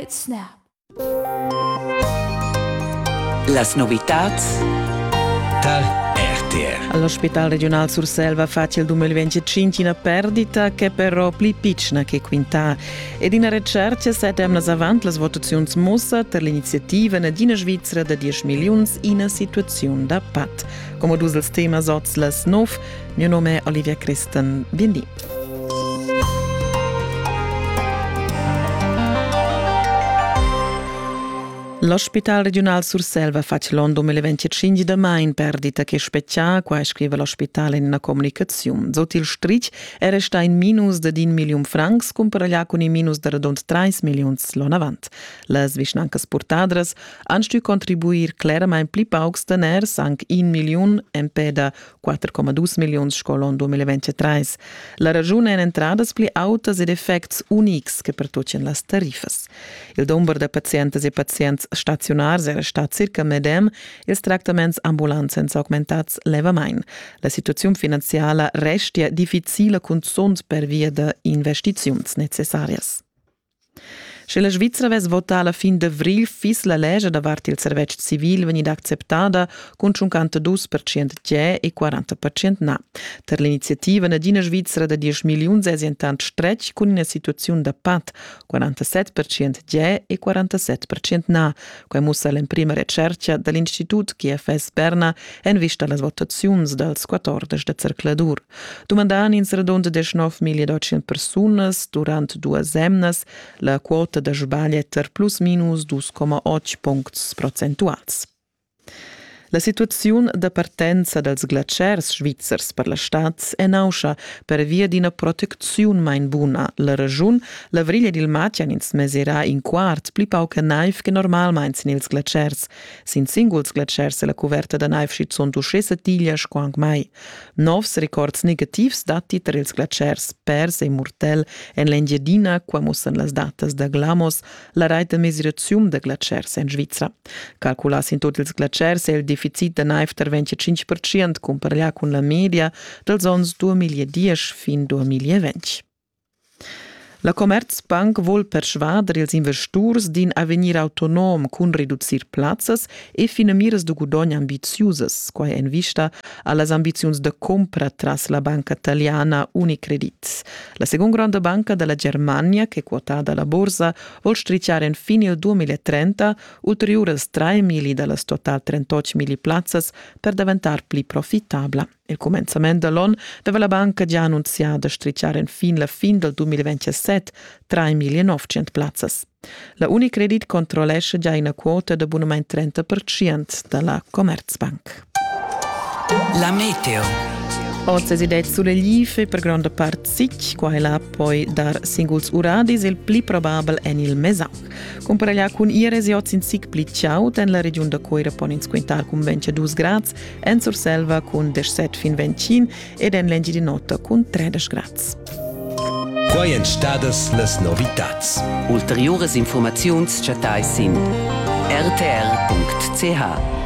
It's Snap. Las novitats tar RTR. All'ospedale regional Surselva facile 2025 una perdita che però pli piccina che quintà. Ed in recerca setem las avant las votazioni mossa per l'iniziativa d'ina Svizzera da 10 milioni in situazione da pat. Come dus dels temas oz las 9, mio nome è Olivia Christen. Bindi. L'ospital regiunal Surselva fatg l'on 2025 da main perdita che spetgia, qua scrive l'ospital in una comunicazione. Sot il strich è resta in minus de din million francs comparaglià con in minus de redond 3 millions l'on avant. Las vischnancas purtadras han stu contribuir clarament pli paucs daners, anche 1 million, empè da 4,2 milliuns sco l'on 2023. La ragiun èn entradas pli autas ed effects unics che pertutgien las tariffas. Il dumber da pazientas e pazients staziunars era stà circa medem, ils tractaments ambulants èn s'augmentads levamain. La situaziun finanziala restia difficila cunzunt pervia da investiziuns necessarias. Sche la Svizra vess votà la fin d'avrigl fiss la lescha davart il servetsch civil vegnida acceptada cun 52 percent tgè e 40 percent na. Tar l'iniziativa nagina Svizra da 10 milliuns èsi entant stretg cun ina situaziun da pat, 47 percent tgè e 47 percent na, Quai mussa l'emprima retschertga da l'Institut GFS Berna en vista a las votaziuns dals 14 da zercladur. Dumandan ins redund 19.800 persunas durant duas emnas la quota da sbaglia per plus minus 2,8 puncts procentuals. La situaziun da partenza dals glatschers svizzers per la stad è nauscha pervia d'ina protecziun main buna. La regiun, l'avrigl ed il matg han ins mesirà in quart pli pauc a naiv che normalmain sin ils glatschers. Sin singuls glatschers è la cuverta da naiv schizunt uschè satiglia sco anc mai. Novs records negativs datti tar ils glatschers pers e murtel en l'Engiadina. Qua mussan las datas da Glamos la rait da mesiraziun da glatschers en Svizra. Calculass in tut ils glatschers è il deficit da naiv tar 25% cumpareglià cun la media dals onns 2010 fin 2020. La Commerzbank vul persvader ils investurs d'in avegnir autonom cun reducir plazzas e finamiras da gudogn ambiziusas, quai en vista a las ambiziuns da cumpra tras la banca italiana Unicredit. La segunda gronda banca da la Germania, che quotada la borsa, vol strichar enfin il 2030 ulteriuras 3 mili da las total 38 mili plazzas per daventar pli profitabla. Il cumenzament da l'on deva la banca già annunzià da strichar enfin la fin dal 2027 3.900 plazzas. La Unicredit controllescha già ina quota d'abunament 30% da la Commerzbank. La meteo. Oz è det sulle life per grande part sic, qua e là poi dar singuls uradis, il pli probabel en il Mesac. Cumparaglià cun Ires oz in sic pli chaud en la regiun da Coira pon ins quintar cun 22 grads, en Surselva cun 17 fin 25 ed en l'Engiadin'Ota cun tredesch grads. Quai èn stadas las novitads. Ulteriuras infurmaziuns chattais sin rtr.ch.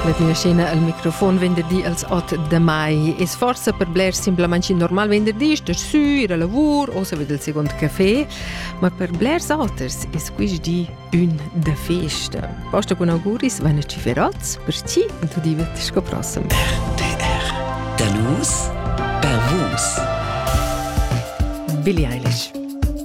Ladina Scena al microfon venderdi als 8 de mai. Es forsa per bler simplamain normal venderdi, sto su, ir a lavur o se vede il secondo caffè, ma per blers auters es quist di Ün da festa. Posta con auguris van a ciferats per ti e tu diventi sco prossim. RDR. Da nus per vus. Billie Eilish.